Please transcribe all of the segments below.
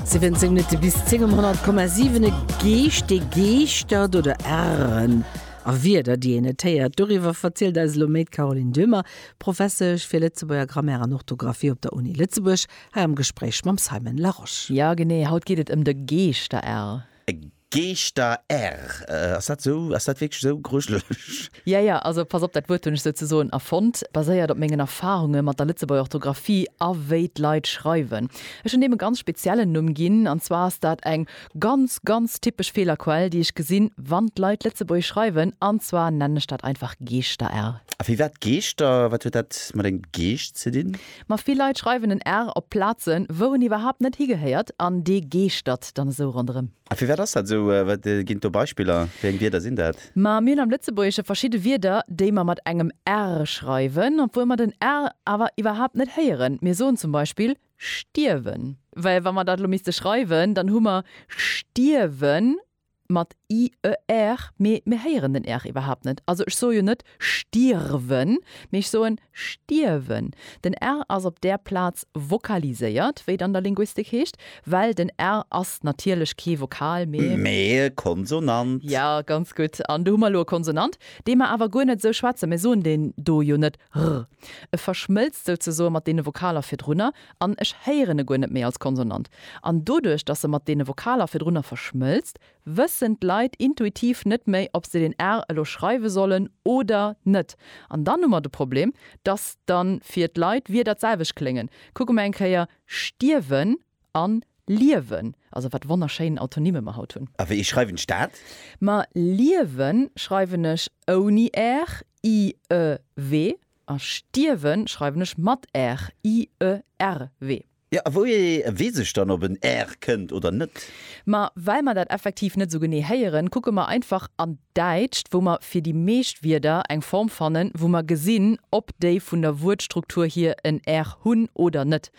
17 Minutte bis 10 um 100,7 e Geescht, dee geeschtert oder Ären a Wierder, déi een net héiert. Doriwwer verzielt eis elo méi d'Caroline Döhmer, Professesch fir Lëtzebuerger Grammaire an Orthografie op der Uni Lëtzebuerg, hei am Gespréich mam Simon Larosche. Jo genee, haut geet et ëm de Geeschter-Är. Geeschter err, ass dat esou? Ass dat wierklech esou grujelech? Jo, jo, also pass op, dat Wuert hunn ech souzesoen erfonnt, baséiert op mengen Erfarunge mat der Lëtzebuerger Orthografie a wéi d'Leit schreiwen. Ech hunn deem e ganz speziellen Numm ginn, an zwar ass dat eng ganz, ganz typesch Feelerquell, déi ech gesinn, wann d'Leit Lëtzebuergesch schreiwen, an zwar nennen ech dat einfach Geeschter err. A firwat Geeschter? Wat huet dat mat engem Geescht ze dinn? Ma vill Leit schreiwen en R op Plazen, wou en iwwerhaapt net higehéiert, an dee geeschtert dann esou ronderëm. A firwat ass dat esou? Wat ginn et do Beispiller? Wéi eng Wierder sinn dat? Ma mir hunn am Lëtzebuergesche verschidde Wierder, déi mer mat engem R schreiwen, obwuel mer den R awer iwwerhaapt net héieren. Mir soen zum Beispill stierwen. Well wa mer dat elo misste schreiwen, dann hu mer stierwen mat IER, mee mir héieren den R iwwerhaapt net. Also ech soe jo net stirwen, mee ech soen stierwen. Den R ass op där Plaz vokaliséiert, wéi et an der Linguistik heescht, well den R ass natierlech kee Vokal, mee. Mee e Konsonant. Jo, ganz gutt. An do hu mer elo e Konsonant, dee mer awer guer net esou schwätzen. Mir soen deen do jo net r. E verschmëlzt souzesoe mat deene Vokaler virdrunner. An ech héieren e guer net méi als Konsonant. An doduerch, dass se mat deene Vokaler virdrunner verschmëlzt, wëssen d'Leit intuitiv net méi, ob se den r elo schreiwe sollen oder net. An dann hu mer de Problem, dass dann fir d'Leit Wierder d'selwecht kléngen. Kucke mer eng Kéier stierwen an liewen. Also wat wonnerschéin Autonymmen mer haut hunn. A wéi schreiwen ech dat? Ma liewen schreiwen ech ouni r, i, e, we. A stierwe schreiwen ech mat r, i, e, r, we. Jo, a wouhier weess ech dann, ob en r kënnt oder net? Ma well mer dat effektiv net esou genee héieren, kucke mer einfach an d'Däitscht, wou mer fir déi meescht Wierder eng Form fannen, wou mer gesinn, ob déi vun der Wuertstruktur hier en r hunn oder net.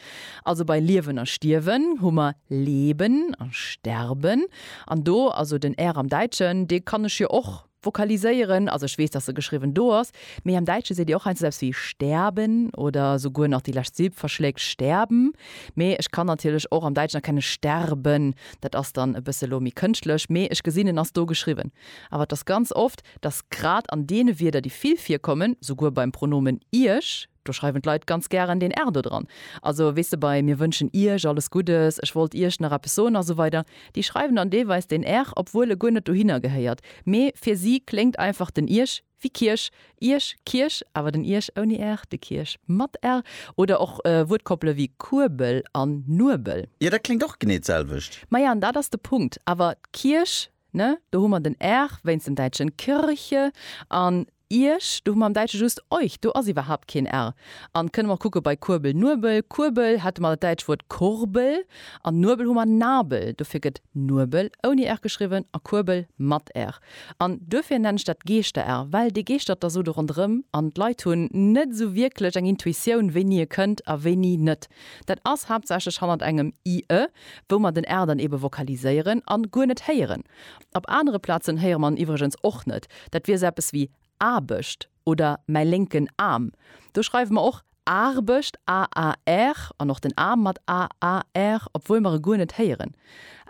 Also bei liewen a stierwen hu mer leben a sterben. An do, also den r am Däitschen, dee kann ech jo och. Vokaliséieren, also ech weess, dass se geschriwwen do ass, mee am Däitsche seet Dir och heiansdo esou eppes wéi sterben oder souguer nach déi lescht Silb verschléckt, sterben. Mee ech kann natierlech och am Däitschen erkennen sterben, dat ass dann e bësse lo méi kënschtlech, mee ech gesinn en ass do geschriwwen. Awer et ass ganz oft, dass grad an deene Wierder, déi vill virkommen, souguer beim Pronomen Iech, Do schreiwen d'Leit ganz gären den Erdo dran. Also weess de bei Mir wënschen Iech alles Guddes, Ech wollt Iech nach eppes soen a sou weider. Déi schreiwen dann deelweis den er, obwuel e guer net dohinner gehéiert. Mee fir si kléngt einfach den Iech wéi Kierch, Iech, Kierch, awer den Iech ouni er, de Kierch mat er. Oder och Wuertkoppele wéi Kuebel an Nuebel. Jo, dat kléngt och genee d'selwecht. Maja, an dat ass de Punkt. Awer d'Kierch, ne, do hu mer den er wéinst dem Däitschen Kirche an Iech, do hu mer am Däitsche just euch, do ass iwwerhaapt keen r. An kënne mer och kucke bei Kuerbel, Nuebel, Kuerbel hätte mer dat däitscht Wuert Kurbel, an Nuebel hu mer Nabel. Dofir gëtt Nuebel ouni r geschriwwen a Kuerbel mat r. An duerfir nennen ech dat Geeschter-r, well dee geeschtert da sou do ronderëm an d'Leit hunn net esou wierklech eng Intuitioun, wéini e kënnt a wéini net. Dat ass haaptsächlech hannert engem i, ë, wou mer den r dann eebe vokaliséieren a guer net héieren. Op anere Plazen héiere mer en iwwregens och net. Dat wier sou eppes wéi Aarbecht oder mäi lénken Aarm. Do schreiwe mer och Aarbecht, AAR, an och den Aarm mat AAR, obwuel mer e guer net héieren.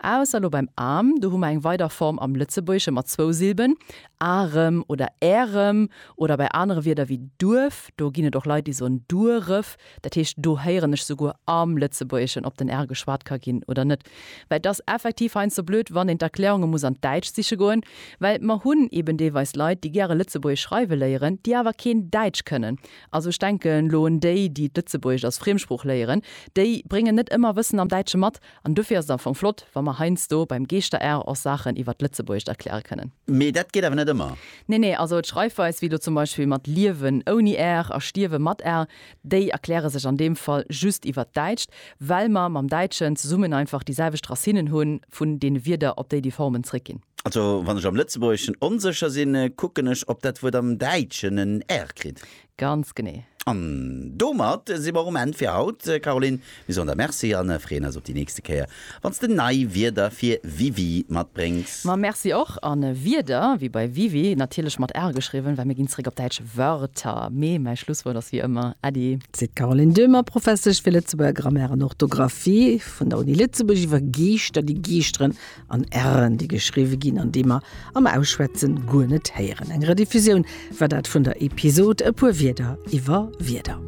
Ausser lo beim Aarm, do hu mer eng weider Form am Lëtzebuergesche mat zwou Silben, Arem oder Ärem. Oder bei anere Wierder wéi Duerf, do ginn et och Leit, déi soen Dueref. Dat heescht, do héieren ech souguer am Lëtzebuergeschen, ob den R geschwat ka ginn oder net, well et ass effektiv heiansdo blöd, wann een d'Erklärunge muss an d'Däitscht siche goen, well mer hunn eeben deelweis Leit, déi gäre Lëtzebuergesch schreiwe léieren, déi awer keen Däitsch kënnen. Also ech denken elo un déi, déi d'Lëtzebuergesch als Friemsprooch léieren, déi bréngen net ëmmer Wëssen am Däitsche mat, An dofir ass et am Fong flott, wa mer heiansdo beim Geeschterärr och Saachen iwwert d'Lëtzebuergescht erkläre kënnen. Mee dat geet awer net ëmmer. Nee, nee, also d'Schreifweis, wéi elo zum Beispill mat liewen ouni ärr a stierwe mat ärr, déi erkläre sech an deem Fall just iwwert d'Däitscht, well mer mam Däitschen zesummen einfach déi selwecht Racinnen hu vun deene Wierder, op déi déi Formen zréckginn. Also wann ech am Lëtzebuergeschen onsécher sinn, kucken ech, ob dat Wuert am Däitschen en r kritt. Ganz genee. An domat si mer um Enn fir haut. Caroline, mir soen der Merci a freeën eis op déi nächste Kéier, wann s de nei Wierder fir WiWi matbréngs. Ma Merci och. A Wierder, wéi bei WiWi, natierlech mat r geschriwwen, well mir ginn zeréck op Däitsch Wörter. Mee mäi Schlusswuert ass wéi ëmmer Äddi. Seet d'Caroline Döhmer, Professesch fir Lëtzebuerger Grammaire an Orthografie vun der Uni Lëtzebuerg, iwwer Geeschter, déi geeschteren an R'en, déi geschriwwe ginn an déi mer am Ausschwätzen guer net héieren. Eng Rediffusioun war dat vun der Episod E puer Wierder iwwer Wierder.